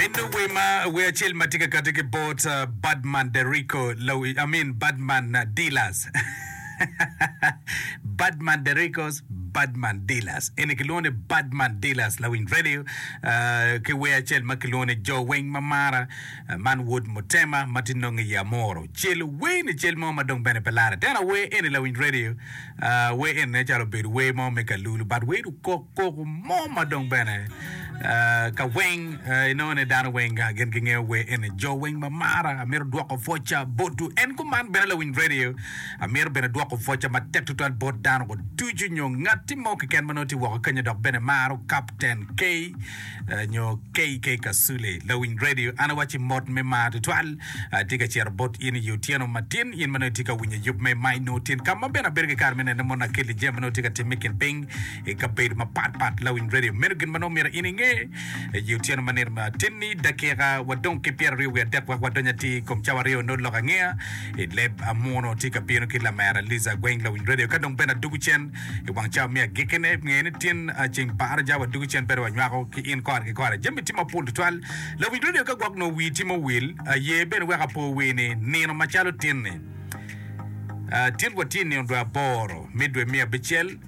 Bino wer ma wer acel ma tye ka kati ki bot Badman the Rico Low I mean Badman Dealers Badman the Ricos Badman Dealers eni kilwongo ni Badman Dealers Lawiny Radio ki wer acel ma kilwongo ni Jo Weng ma Mara man Wod Mutema ma tye nongo i Amoro celo wer ni cel mo ma dong bene pe lare tena wer eni Lawiny Radio wer eni nen calo obedo wer mo me kalulu but wer okok koko mo ma dong bene ka weng inongo ni dano weng gin gingeyo wer eni jo weng ma mara amito dwoko pwocca botu en kuman bene lawiny radio amito bene dwoko pwocca matek tutwal bot dano ducu nyo ngatti mo keken ma nongo tye woko kenya dok bene maro kapten K nyo KK Kasule, lawiny radio, an awacci mot me mar tutwal atye ka cito bot in i otyeno matin, in ma nongo itye ka winyo yub me Mine Nwo Tin, ka ma bene abedo ki kare me nene mon Akelli jami ma nongo tye ka timme i kin piny i kabedo mapat pat. Lawiny radio, meno gin ma nongo myero in inge i otyeno ma nino matin-ni. Dakika wadong ki pyeraryo wiye adek wek wadony atir i kom cawa aryo nongo lok angeya i leb amuno tye ka bino ki lamera Liza Gweng, lawiny radio, ka dong Ben Adugu Cen, I wang cawa me agikkine, nge ni tyen ceng par, ja wa dugo cen pedo wa nywako ki in kora ki kora. Jami tye mapol tutwal. Lawinj radio ka gwok nongo wii tye ma owil, aye bene weko apo wii ni nino macalo tin-ni, ah, tin wa tye i nino dwe aboro me dwe me abicel,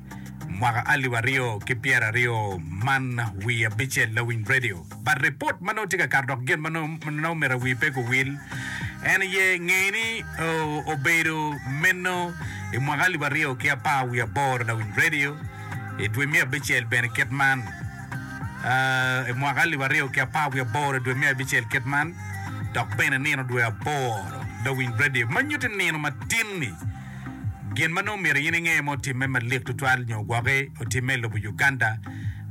mwaka alip aryo ki pyeraryo, man wii abicel, Lawinj radio. but report ma nongo tye ka kato dok gin ma nongo myero awi pe guwil en aye ngeye ni obedo meno i mwaka alip aryo ki apar wiye aboro na Winy Radio i dwe me abicel bene kit man aa i mwaka alip aryo ki apar wiye aboro i dwe me abicel kit man dok bene nino dwe aboro na Winy Radio ma nyuti nino matin-ni Gin ma nongo myero in inge ma otimme malik tutwal nyo gwoki otimme i lobo Uganda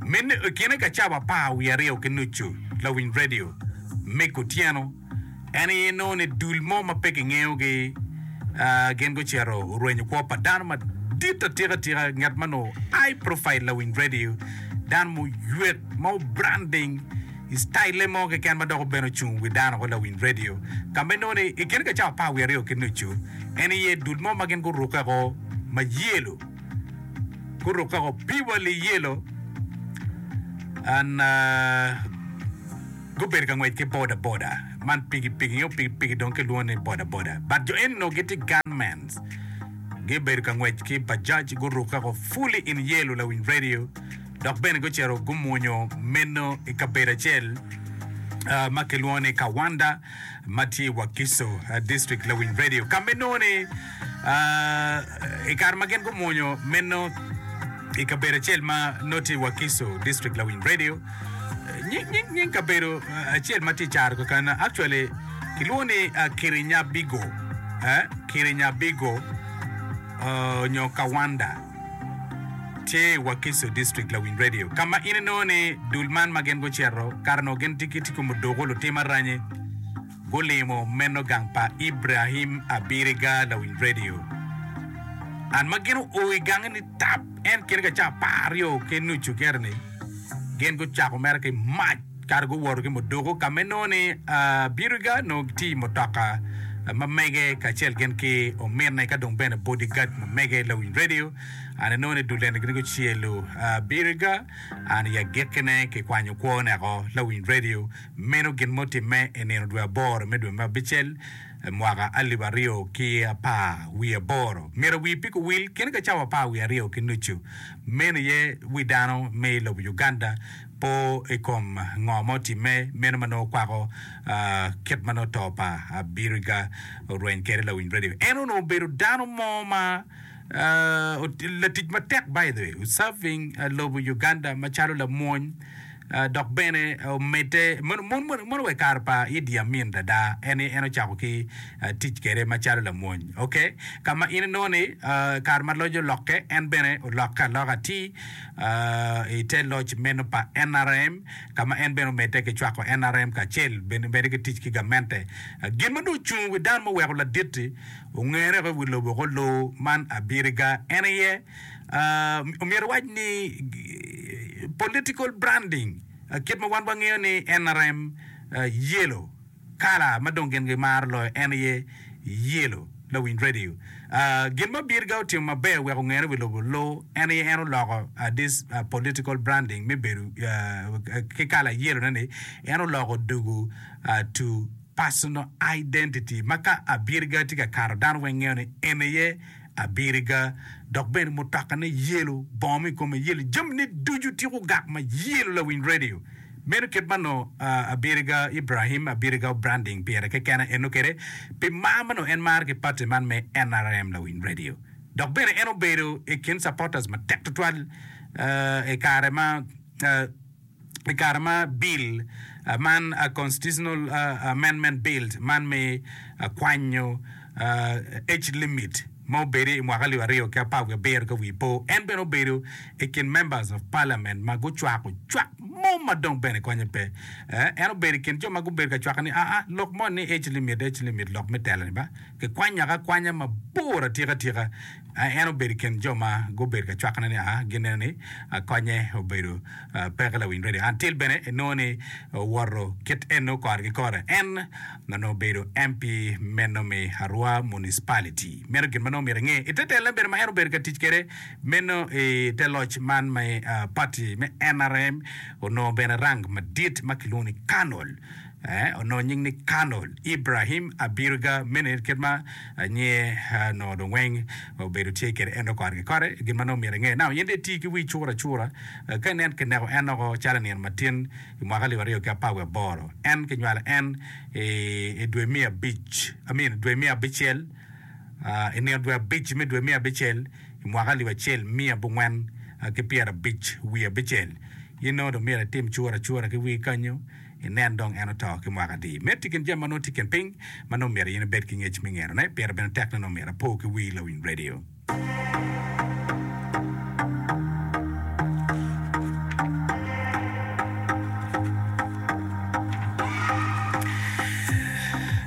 meno i kine ka cawa apar wiye aryo ki nucu lawiny redio me kutyeno en aye nongo ni dul mo ma pe kingeyo gi gin gucito orwenyo kwo pa dano madit atika tika nget ma nongo high profile lawiny redio dano ma oywe ma obranding i citayille mo keken ma dok obedo ocung wi dano ko lawiny redio, ka ma inongo ni i kine ka cawa apar wiye aryo ki nucu, en iye dul mo ma gin gurukke ko ma yelo, gurukke ko piwali yelo, and gubedo ka ngwec ki boda boda, man piki piki nyo piki piki dong ki lwongo ni boda boda, but jo eni onongo gitye gunmen, gibedo ka ngwec ki bajaj gurukke ko fully in yelo lawiny redio dok bene gucito gumwonyo meno i kabedo acel ma kilwongo ni Kawanda ma tye i Wakiso District Lawiny Radio ka ma inongo ni i kare ma gin gumwonyo meno i kabedo acel ma nongo tye i Wakiso District Lawiny Radio nying kabedo acel ma tye i caro keken actually kilwongo ni Kirinyabigo Kirinyabigo nyo Kawanda Tye i Wakiso District Lawiny Radio ka ma in inongo ni dul man ma gin gucito kare onongo gin tye ki ticco me doko lutim aranyi. Gulimo meno gang pa Ibrahim Abiriga Lawiny Radio and ma gin oo i gange ni tap en kine ka ca apar aryo ki nucu keri ni gin gucako mere ki mac. Kare guwoto ki mudoko ka ma inongo ni Biriga onongo gitye i mutoka ma mege kacel gin ki ominne ka dong bene bodyguard ma mege lawiny redio. An inongo ni dulene gin gucelo Biriga, an i agikkine kikwanyo kwo neko lawiny redio meno gin ma otimme i nino dwe aboro me dwe me abicel mwaka alip aryo ki apar wiye aboro. Myero awir pi kuwil kene ka cawa apar wiye aryo ki nucu meno aye wi dano me lobo Uganda po i kom ngo ma otimme, meno ma nongo kwako kit ma nongo to pa Abiriga orweny kwede. Lawiny Radio en onongo obedo dano mo ma latic matek by the way, serving lobo Uganda macalo lamwony dok bene omedde mono wa i kare pa Idi Amin ada, en en ocako ki tic kwede macalo lamwony ok, ka ma in inongo ni kare ma loc olokke en bene olokke aloka atir. i te loc meno pa nrm, ka ma en bene omedde ki cwako nrm kacel bene ki tic ki gamente. Gin ma dong ocung i wi dano muweko ladit-ti ongene woko i wi lobo woko loo man abiriga en aye, myero iwac ni political branding, kit ma wan wangeyo ni nrm yellow. Kala ma dong gin gimaro loyo en aye yelo, lawiny redio. Gin ma Birga otimo maber wek ongene wi lobo lu en aye en oloko this political branding me bedo ki kala yellow-ne ni en oloko dugu to personal identity ma ka Birga tye ka kato dano weng ngeyo ni en aye abiriga, dok bene mutokane yelo, bongo mo i kome yelo, jamine ducu tye gugak ma yelo lawiny radio. Meno kit ma nongo abiriga Ibrahim abiriga obranding pire kekena eno kede pi mar ma nongo en maro ki pati man me NRM lawiny radio. Dok bene en obedo i kin supporters matek twatwal i kare ma i kare ma Bil man, Constitutional Amendment Bill, man me kwanyo age limit ma obede i mwaka alip aryo ki apar wiye abiro ka wiye po, en bene obedo i kin Members of Parliament ma gucwako cwak mo ma dong bene konye pe. En obedo i kin jo ma gubedo ka cwake ni, Aa, lok moni ni age limit, age limit lok me telo-ni ba? Kikwanyaka akwanya mabor atika tika. A En obedo i kin jo ma gubedo ka cwakone ni a gineno ni a konye obedo peke lawiny redio. An Till bene enongo ni owoto kit eno kore ki kore. En ma nongo obedo MP meno me Arua Municipality. Meno gin ma nongo myero inge. I te telone bene ma en obedo ka tic kwede meno i te loc man me pati me NRM onongo bene rank madit ma kilwongo ni Colonel. Eh, onongo nying ni Kano, Ibrahim Abirga mene kit ma anyer eh, onongo dong weng obedo tye kede en dong kore ki kore. Gin ma nongo myero inge, nao in dong iti ki wii cura cura eh, ka inen ki neko en oko calo nino matin i mwaka alip aryo ki apar wiye aboro. En ki nywalo en i, i dwe me abic, I mean dwe me abicel, ah, i nino dwe abic me dwe me abicel i mwaka alip acel miya abongwen eh, ki pyera abic wiye abicel. In nongo dong myero itim cura cura ki wii kanyo. inen dong en oto ki mwaka adi. Medo i kin jami ma nongo tye i kin piny ma nongo myero in ibed ki ngec me ngerone, pire bene tek ni nongo myero apo ki wii lawiny redio.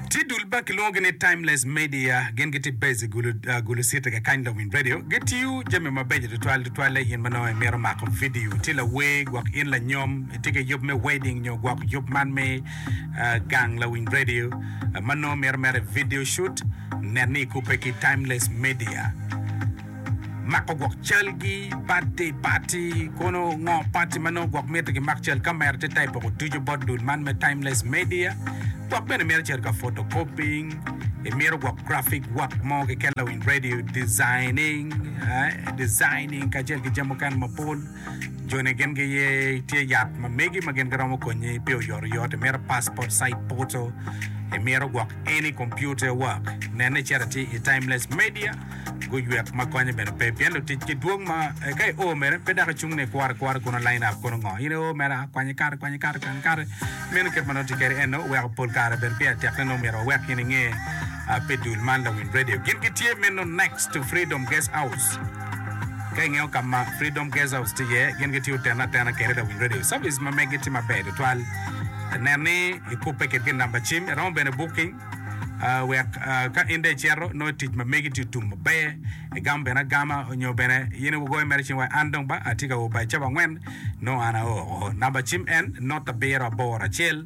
Tye dul ma kilwongogi ni Timeless Media, gin gitye based i Gulu, ah, Gulu City kakany lawiny redio. Gitiyo jami mabeco tutwal, tutwalle in ma nongo imito mako vidio. Tye lawer gwok in lanyom. Tye ki yub me wedding nyo gwok yub man me gang lawiny radio ma nongo mito mere video shoot? Nen ni ikubbe ki Timeless Media. Mako gwok calgi, birthday party, kono ngo party ma nongo gwok mito kimak cal, kamera tye type poko ducu bot dul man me Timeless Media. Gwok bene mito cito ka photocopying, imito gwok graphic work mo keken lawiny radio, designing, eh, designing kacel ki jami mukene mapol. Joni gin giye tye yat ma megi ma gin giromo konyi pi oyotoyot. Imito passport size photo, imito gwok any computer work, nene icito ati i Timeless Media guywek ma konye bene pe pien lutic gi dwong ma eh, ka i o mere pe dako cung ni kwore kwore kuno line up kuno ngo in i o mere ah, kwanye kare kwanye kare kwanye kare meno kit ma nongo tye kede eno oweko pol kare bedo pi atek ne nongo myero wawek in inge ah, pi dul man Lawiny Radio gin gitye meno next to Freedom Guest House. Ka ingeyo ka ma Freedom Guest House tye iye, gin gitiyo tene atena kede lawiny redio. Service ma megi tye maber tutwal. Nen ni ikubbe kitgi namba cim. Iromo bene booking wek ka in dong icito nongo tic ma megi tye tum maber, igam bene agama nyo bene in igoyo mere cing iwaco an dong ba atye ka o by cabo angwen nongo an ao oo. Namba cim en not abiro aboro acel.